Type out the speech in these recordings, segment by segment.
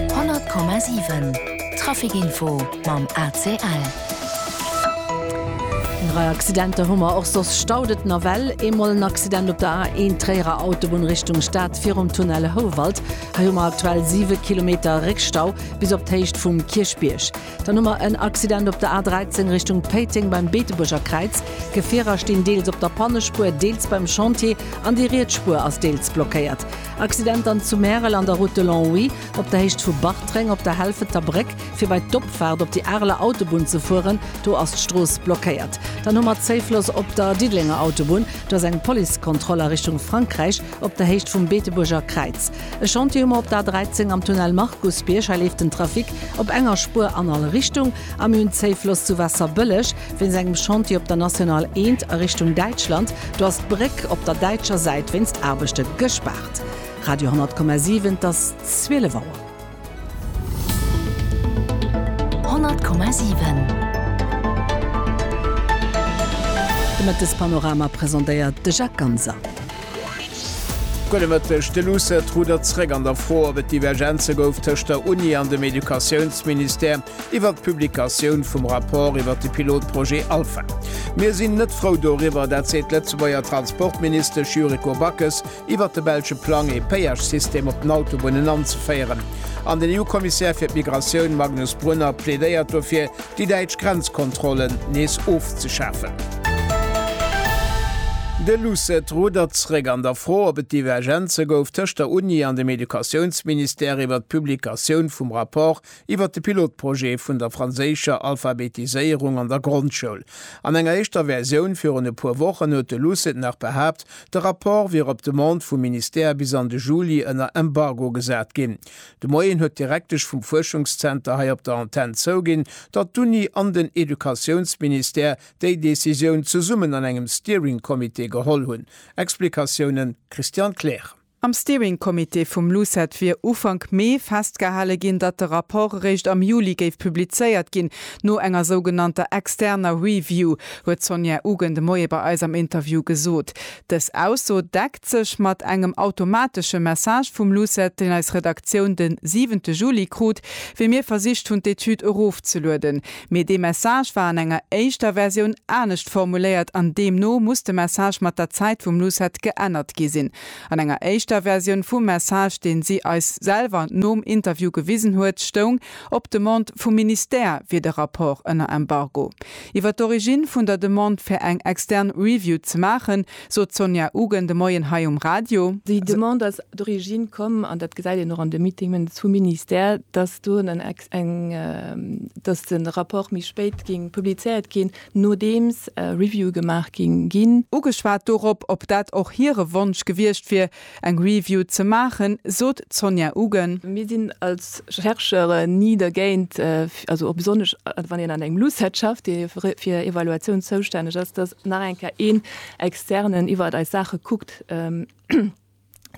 100,7 Trafic Info mam ACL. Eng Rei Accidenter hu mer, och soss staut et nawell. Eemol en Accident op der A1 Tréierer Autobunn Richtung Stad virum Tunnel Houwald. Hei hu mer aktuell 7 Kilometer Réckstau bis op d'Héicht vum Kierchbierg. Dann hu mer en Accident op der A13 Richtung Péiteng beim Beetebuerger Kräiz. Gefierer stinn deels op der Pannespuer, deels beim Chantier an déi riets Spuer ass deels blockéiert. Accident an zu Märel an der Route de Longwy, op der Héicht vu Bartreng op der Helfeter Bréck fir bei d'Opfaart op déi Areler Autobunn ze fueren, do ass d'Strooss blockéiert. Dann hu mer Zéifloss op der Diddelenger Autobunn, do ass eng Policekontroll a Richtung Frankräich op der Héicht vum Beetebuerger Kräiz. E Chantier hu mer op der A13 am Tunnel Markusbierg, hei leeft den Trafic op enger Spuer an all Richtung a mir hunn Zéifloss zu Wasserbëlleg, Wéinst engem Chantier op der National 1 a Richtung Däitschland, do ass d'Bréck op der däitscher Säit wéinst Aarbechte gespaart. Radio 10,7 Et ass 12 Auer. 10,7 De Mëttespanorama presentéiert de Jacques Ganser. Gudde Mëtteg. De LUCET rudert zeréck an der Fro, ob et Divergenze gouf tëscht der Uni an dem Educatiounsministère. iwwert d'Publikatioun vum Rapport iwwert de Pilotprojet Alpha. Mir sinn net frou doriwwer, dat seet d'Lëtzebuerger Transportministesch Yuriko Backes iwwert de belsche Plang, ee Péage-System op den Autobunnen anzeféieren. An den EU-Kommissär fir d'Migratioun Magnus Brunner plädéiert dofir, déi däitsch Grenzkontrollen nees ofzeschafen. De Lucet rudert zréck an der Fro, ob et Divergenze gouf tëscht der Uni an dem Educatiounsministère iwwert d'Publikatioun vum Rapport iwwert de Pilotprojet vun der franséischer Alphabetiséierung an der Grondschoul. An enger éischter Versioun virun e puer Wochen huet de Lucet nach behaapt, de Rapport wier op Demande vum Ministère bis an de Juli ënner Embargo gesat ginn. De Moien huet d'Direktesch vum Fuerschungszenter hei op der Antenn zouginn, datt d'Uni an den Educatiounsministère déi Decisioun zesummen an engem Steering Comité geholl hunn. Explikatiounen, Christian Kleerer. Am Steering Comité vum LUCET wier Ufank Mee festgehale ginn, datt de Rapport eréischt am Juli géif publizéiert ginn, no enger sougenannter externer Review, huet d'Sonia Ugen de Moie bei eis am Interview gesot. Dës Ausso deckt sech mat engem automatesche Message vum LUCET, deen eis Redaktioun de siwente Juli krut, wéi mir versicht hunn d'Etüd erofzelueden. Mee dee Message war an enger éischter Versioun anescht formuléiert an deemno muss de Message mat der Zäit vum LUCET geännert gi sinn. An enger éischter Versioun vum Message, deen si eis selwer nom Interview gewisen huet, stoung, Op Demande vum Ministère wier de Rapport ënner Embargo. Iwwer d'Origine vun der Demande fir eng extern Review ze maachen, sot d'Sonia Ugen de Moien hei um Radio. Déi Demande ass d'origine komm, an dat gesäit een och an de Meeting Minutes vum Ministère, dass do en, dass de Rapport méi spéit géing publizéiert ginn, Nodeems Reviewe gemaach ginn ginn. Ugeschwat dorop, ob dat och hire Wonsch gewiescht wier, eng Review ze maachen, sot d'Sonja Ugen. Mir sinn als Chercheure ni dergéint, also och besonnesch wann een an engem LUCET schafft, dee fir Evaluatioun zoustänneg ass, datt nach eng Kéier een Externen iwwert eis Saache kuckt.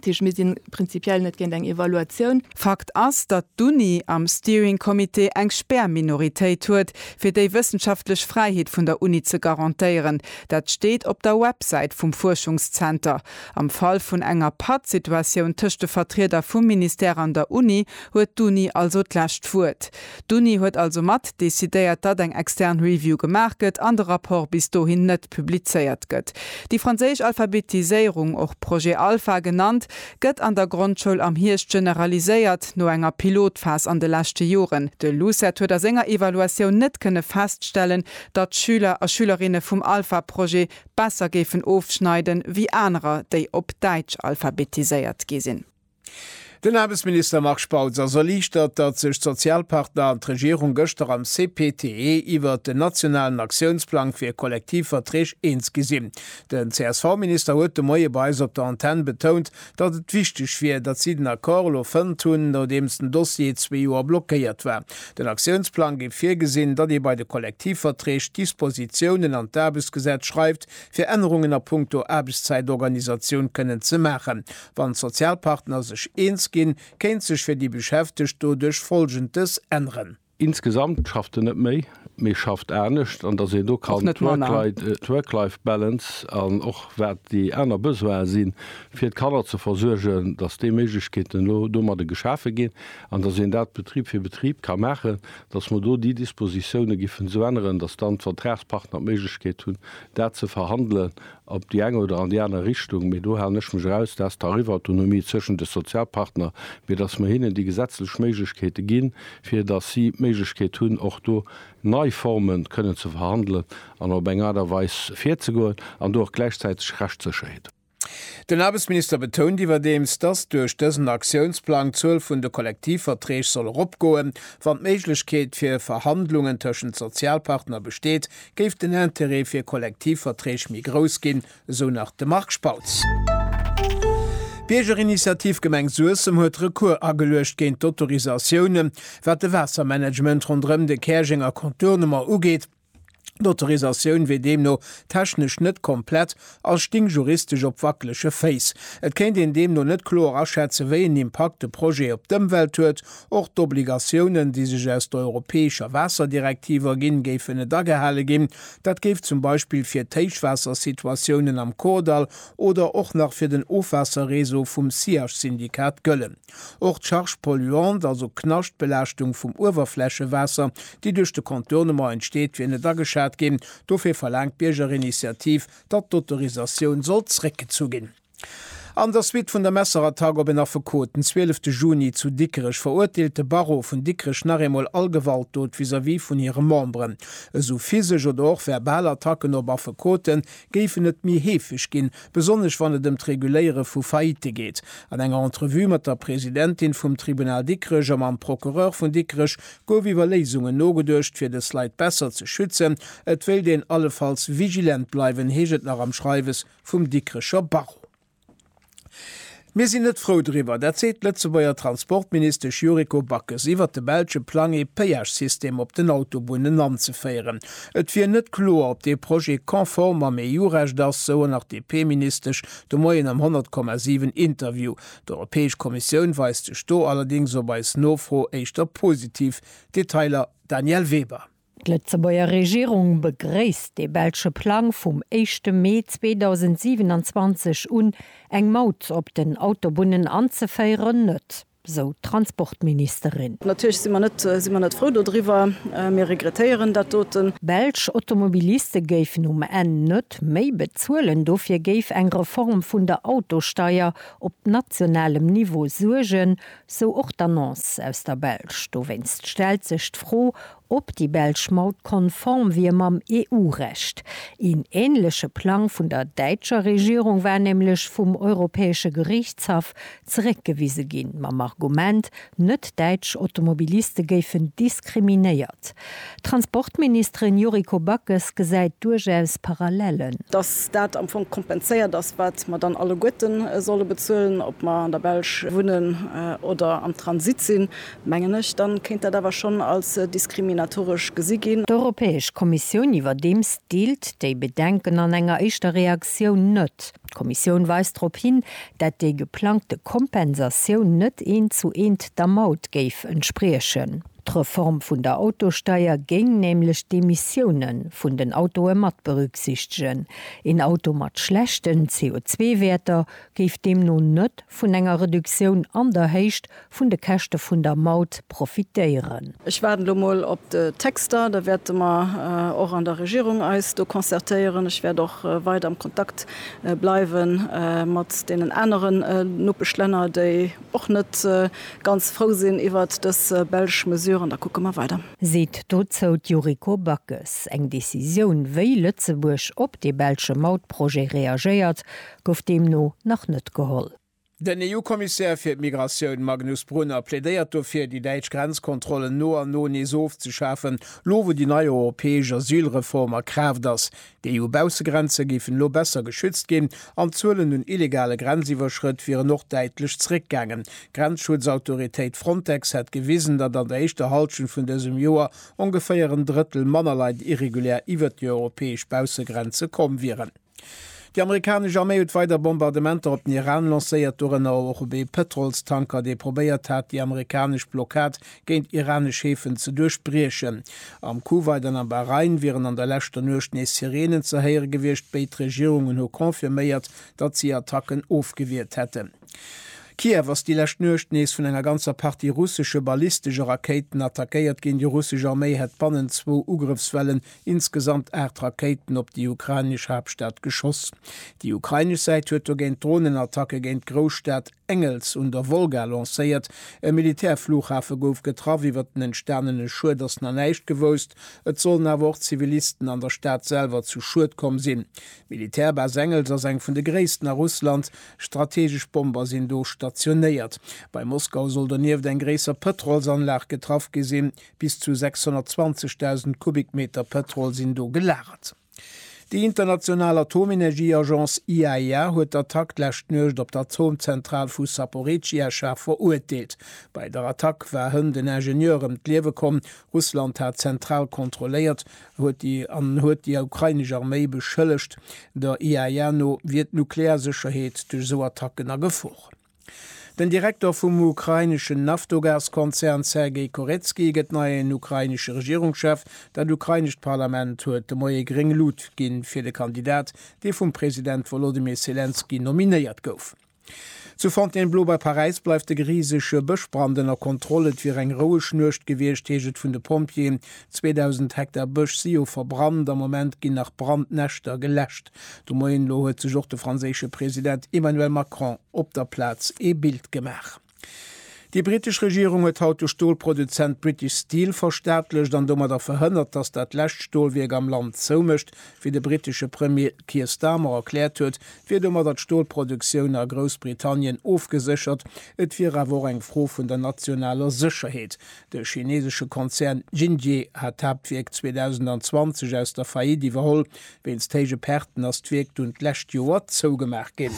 Dat heescht, mir si prinzipiell net géint eng Evaluatioun. Fakt ass, datt d'Uni am Steering Committee eng Spärminoritéit huet, fir déi wëssenschaftlech Fräiheet vun der Uni ze garantéieren. Dat steet op der Websäit vum Fuerschungszenter. Am Fall vun enger Pattsituatioun tëscht de Vertrieder vum Ministère an der Uni huet d'Uni also d'lescht Wuert. D'Uni huet also mat decidéiert, datt eng extern Review gemaach gëtt an de Rapport bis dohin net publizéiert gëtt. Déi franséisch Alphabetiséierung, och Projet Alpha genannt, gëtt an der Grondschoul am Hierscht generaliséiert, no enger Pilotphas an de leschte Joren. De LUCET huet a senger Evaluatioun net kënne feststellen, datt Schüler a Schülerinne vum Alpha-Projet besser géifen ofschneiden, wéi anerer, déi op Däitsch alphabetiséiert gi sinn. Den Aarbechtsminister Marc Spautz ass erliichtert, datt sech d'Sozialpartner an d'Regierung gëschter am CPTE iwwert den nationalen Aktiounsplang fir Kollektivverträg eens gi sinn. Den CSV-Minister huet de Moie bei eis op der Antenn betount, datt et wichteg wier, datt si den Accord elo fënnt hunn, nodeems den Dossier zwee Joer blockéiert war. Den Aktiounsplang géif virgesinn, datt ee bei de Kollektivverträg d'Dispositiounen an d'Aarbechtsgesetz schreift, fir Ännerungen a puncto Aarbechtszäitorganisatioun kënnen ze maachen. Wann d'Sozialpartner sech eens ginn, kéint sech fir déi Beschäftegt doduerch Folgendes änneren. Insgesamt schafft en net méi, mee schafft anescht an datt een do kann d'Work-Life Balance an och wat déi aner Besoine si fir d'Kanner ze versuergen, datt déi Méiglechkeeten elo domadde geschafe ginn an datt een dat Betrib fir Betrib ka maachen, datt mer do déi Dispositione giffen esou änneren, datt dann d'Vertragspartner d'Méiglechkeet hunn, dat ze verhandelen op déi eng oder an déi aner Richtung, mee do halen ech mech eraus, dat ass d'Tarifautonomie zwëschen de Sozialpartner, mee datt mer hinnen déi gesetzlech Méiglechkeete ginn, fir datt si d'Méiglechkeet hunn, och do nei Forme kënnen ze verhandelen an op eng Aart a Weis virzegoen an do och gläichzäiteg Rechtssécherheet. Den Aarbechtsminister betount iwwerdeems, datt duerch dësen Aktiounsplang d'Zuel vun de Kollektivverträg soll eropgoen, wann d'Méiglechkeet fir Verhandlungen tëschent Sozialpartner besteet, géif den Interêt fir Kollektivverträg méi grouss ginn, esou nach de Marc Spautz. D'Biergerinitiativ Gemeng Suessem huet Recours ageluecht géint d'Autorisatioune wat de Waassermanagement ronderëm de Käerjenger Contournement ugeet. D'Autorisatioun wier deemno technesch net komplett ass, sting juristesch op wackelege Féiss. Et kéint een deemno net kloer aschätzen, wéi en Impakt de Projet op d'Ëmwelt huet. Och d'Obligatiounen, déi sech aus der europäescher Waasserdirektiv erginn, géifen net agehale ginn. Dat géif zum Beispill fir d'Héichwaassersituatiounen am Kordall oder och nach fir den Ofwaasserreseau vum SIACH-Syndikat gëllen. Och d'Charge polluante, also d'Knaschtbelaaschtung vum Uewerflächewaasser, déi duerch de Contournement entsteet, wier net ageschat ginn. Dofir verlaangt d'Biergerinitiativ, datt d'Autorisatioun soll zréckgezu ginn. An der Suite vun der Messerattack op en Affekot, den 12 de Juni zu Dikrech, verurteelt de Barreau vun Dikrech nach eemol all Gewaltdot vis-à-vis vun hire Memberen. Esou physesch oder och verbal Attacken op Affekote géifen et méi heefeg ginn, besonnesch wann et ëm d'Reguléiere vu Faillitte geet. An enger Entrevue mat der Presidentin vum Tribunal Dikrech a mam Procureur vun Dikrech gouf iwwer Léisungen nogeduecht, fir dës Leit besser ze schützen. Et wéilt een allefalls vigilent bleiwen, heescht et nach am Schreiwes vum Dikrecher Barreau. Mir sinn net frou driwwer, dat seet d'Lëtzebuerger Transportministesch Yuriko Backes iwwert de belsche Plang ee Péage-System op den Autobunnen anzeféieren. Et wier net kloer, ob dee Projet konform mam EU-Recht ass, sou en RTP-Ministesch de Moien am 100,7 Interview. D'Europäesch Kommissioun weist sech do allerdéngs op eis Nofro éischter positiv. Detailer, Danièle Weber. D'Lëtzebuerger Regierung begréisst dee belsche Plang, vum éischte Mee 2027 un eng Maut op den Autobunnen anzeféieren, net, sou d'Transportministerin. Natierlech si mer net, si mer net frou dodriwwer. Mir regrettéieren dat doten. Belsch Automobiliste géifen um Enn net méi bezuelen. Dofir géif eng Reform vun der Autosteier op nationalem Niveau suergen, Sou och d'Annonce aus der Belsch. Dowéinst stellt sech d'Fro, ob déi belsch Maut konform wier mam EU-Recht. Een änleche Plang vun der däitscher Regierung war nämlech vum Europäesche Geriichtshaff zeréckgewise ginn, mam Argument, net-däitsch Automobiliste géifen diskriminéiert. D'Transportministerin Yuriko Backes gesäit duerchaus Parallellen. datt dat am Fong kompenséiert ass, wat mer dann alleguerten solle bezuelen, ob mer an der Belsch wunnen oder am Transit sinn, mengen ech, da kéint dat awer schonn als diskriminatoresch gesi ginn. D'Europäesch Kommissioun iwwerdeems deelt déi Bedenken an enger éischter Reaktioun net. D'Kommissioun weist drop hin, dat déi geplangte Kompensatioun net eent zu eent der Maut géif entspriechen. D'Reform vun der Autosteier géing nämlech d'Emissioune vun den Autoe mat berücksichtegen. Een Auto mat schlechten CO2-Wäerter géif deemno net vun enger Reduktioun an der Héicht vun de Käschte vun der Maut profitéieren. Ech waarden elo mol op de Texter. Da wäerte mer och an der Regierung eis do concertéieren. Ech wäert och weider am Kontakt bleiwe mat deenen aneren Nopeschlänner, déi. och net ganz frou sinn iwwer dës belsch Mesure an da kucke mer weider. Seet dozou d'Yuriko Backes. Eng Decisioun, wéi Lëtzebuerg op dee belsche Mautprojet reagéiert, gouf deemno nach net geholl. Den EU-Kommissär fir d'Migratioun Magnus Brunner plädéiert dofir, déi däitsch Grenzkontrollen no an no nees ofzeschafen, lo wou déi nei europäesch Asylreform a Kraaft ass. D'EU-Baussegrenze géifen elo besser geschützt ginn an d'Zuelen un illegale Grenziwwerschrëtt wieren och däitlech zeréckgaangen. D'Grenzschutzautoritéit Frontex hätt gewisen, datt an der éischter Hallschent vun dësem Joer ongeféier en Drëttel manner Leit irregulär iwwert déi europäesch Baussegrenze komm wieren. Déi amerikanesch Arméi huet weider Bombardementer op den Iran lancéiert, dorënner och op ee Pëtrolstanker, dee probéiert hat, déi amerikanesch Blockad géint iranesch Häfen ze duerchbriechen. Am Kuwait an am Bahrain wieren an der leschter Nuecht nees Sireenen ze héiere gewiescht. Béid Regierungen hu confirméiert, datt si Attacken ofgewiert hätten. Kiew ass déi lescht Nuecht nees vun enger ganzer Partie russesche ballistesche Rakéiten attackéiert ginn. Déi russesch Arméi hätt bannent zwou Ugrëffswellen insgesamt aacht Rakéiten op déi ukrainesch Haaptstad geschoss. Déi ukrainesch Säit huet dogéint Dronenattacke géint d'Grousstad. Engels un der Wolga lancéiert. E Militärflughafe gouf getraff. Iwwer den entstanene Schued ass nach näischt gewousst. Et sollen awer och Zivilisten an der Stad selwer zu Schued komm sinn. D'Militärbase Engels ass eng vun de gréissten a Russland. Strateegesch Bomber sinn do stationéiert. Bei Moskau soll donieft eng gréisser Pëtrolsanlag getraff gi sinn. Bis zu 620.000 Kubikmeter Pëtrol sinn do gelagert. Déi international Atomenergieagence IAEA huet d'Attack d'lescht Nuecht op d'Atomzentral vu Saporecia schaarf verurteelt. Bei der Attack war hënt en Ingenieur ëm d'Liewe komm. Russland hat d'Zentral kontrolléiert an huet déi ukrainesch Arméi beschëllegt. Der IAEA no wier d'Nuklearsécherheet duerch esou Attacken a Gefor. Den Direkter vum ukraineschen Naftogaz-Konzern Sergei Koretskiy gëtt neien ukrainesche Regierungschef. Dat ukrainescht Parlament huet de Moie gréng Lut ginn, fir de Kandidat, dee vum President Wolodymyr Selenskyj nominéiert gouf. Zu Fontainebleau bei Paräis bleift e risege Bëschbrand ënner Kontroll. Et wier eng roueg Nuecht gewiescht, heescht et vun de Pompjeeën. 2.000 Hektar Bësch si jo verbrannt. Am Moment ginn nach Brandnäschter geläscht. De Moien elo huet sech och de franséische President Emmanuel Macron op der Plaz ee Bild gemaach. Déi britesch Regierung huet haut de Stolproduzent British Steel verstaatlecht an domadder verhënnert, datt dat lescht Stolwierk am Land zoumécht. Wéi de britesche Premier Keir Starmer erkläert huet, wier domadder d'Stolproduktioun a Groussbritannien ofgeséchert. Et wier awer och eng Fro vun der nationaler Sécherheet. De chineesesche Konzern Jinje hat d'Haaptwierk 2020 aus der Faillite iwwerholl, Wéinst héije Perten ass d'Wierk dunn d'lescht Joer zougemaach ginn.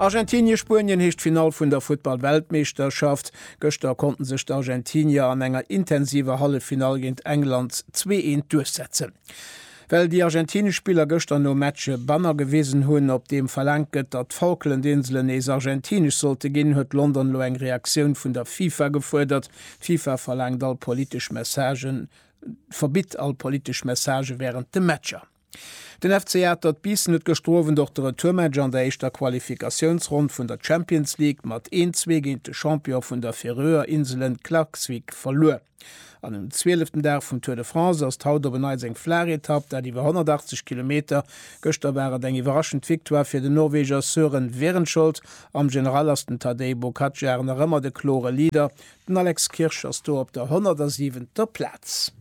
Argentinie-Spuenien heescht d'Finall vun der Futtball-Weltmeeschterschaft. Gëschter konnten sech d'Argentinier an enger intensiver Halleffinall géint England zwee eent duerchsetzen. Well déi argentinesch Spiller gëschter nom Match e Banner gewisen hunn, op deem verlaangt gëtt, datt d'Falkland-Inselen nees argentinesch sollte ginn, huet London elo eng Reaktioun vun der FIFA gefuerdert. D'FIFA verlaangt all politesch Messagen verbitt all politesch Messagë wärend de Matcher. Den FC Atert Biissen huet gëschter Owend och de Retourmatch an der éischter Qualifikatiounsronn vun der Champions League mat een Zwee géint de Champion vun der Färöer Inselen Klaksvík verluer. An um zwieleften Dag vum Tour de France ass et haut op en Neits eng flaach Etapp, dat iwwer 180 Kilometer. Gëschter war et eng iwwerraschend Victoire fir den Norweger Søren Wærenskjold. Am General ass den Tadej Pogacar nach ëmmer de klore Leader. Den Alex Kirsch ass do op der 107. ter Plaz.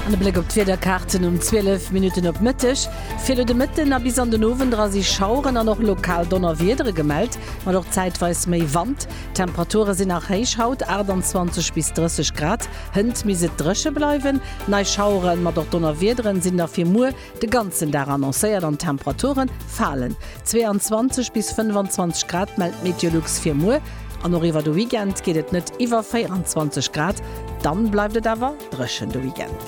An e Bléck op d'Wiederkaarten um 12 Minutten op Mëtteg. Fir elo de Mëtten a bis an den Owend era si Schaueren an och lokal Donnerwiedere gemellt, mat och zäitweis méi Wand. D'Temperature sinn nach héich haut, 28 bis 30 Grad. Hënt misst et dréche bleiwen. Nei Schaueren, mat och Donnerwiederen, sinn da fir muer. De ganzen Dag annoncéiert an d'Temperature falen. 22 bis 25 Grad mellt d'Meteolux fir muer an och iwwer de Weekend geet et net iwwer 24 Grad. Dann bleift et awer dréchen de Weekend.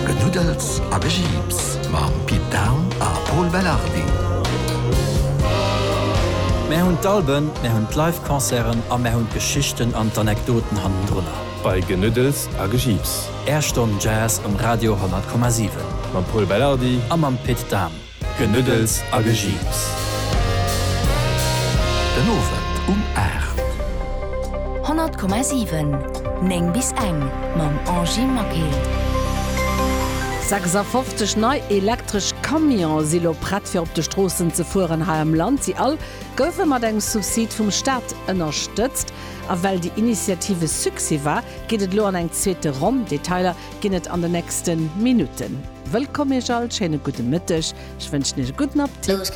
Geduddels a Gejiips mam Pit Dahm a Pol Belarding. Mär hunn d'Alben, mär hunn d'Live-Concerten a mär hunn d'Geschichten an d'Anekdoten hannendrunner. Bei Genuddels a Gejiips. Är Stonn Jazz um Radio 100,7. Mam Pol Belardi. A mam Pit Dahm. Genuddels a Gejiips. Den Owend um 8. 100,7. 9 bis eng mam Angy Maquet. 56 nei elektresch Camionë si lo prett fir op de Stroossen ze fueren hei am Land. Si all goufe mat engem Subsid vum Staat ënnerstëtzt. A well déi Initiative e Succès war, geet et elo an eng zweete Ronn. Detailer ginn et an den nächste Minutten. Wëllkomm iech all, schéine gudde Mëtteg. Ech wënschen iech e gudden Aptitt.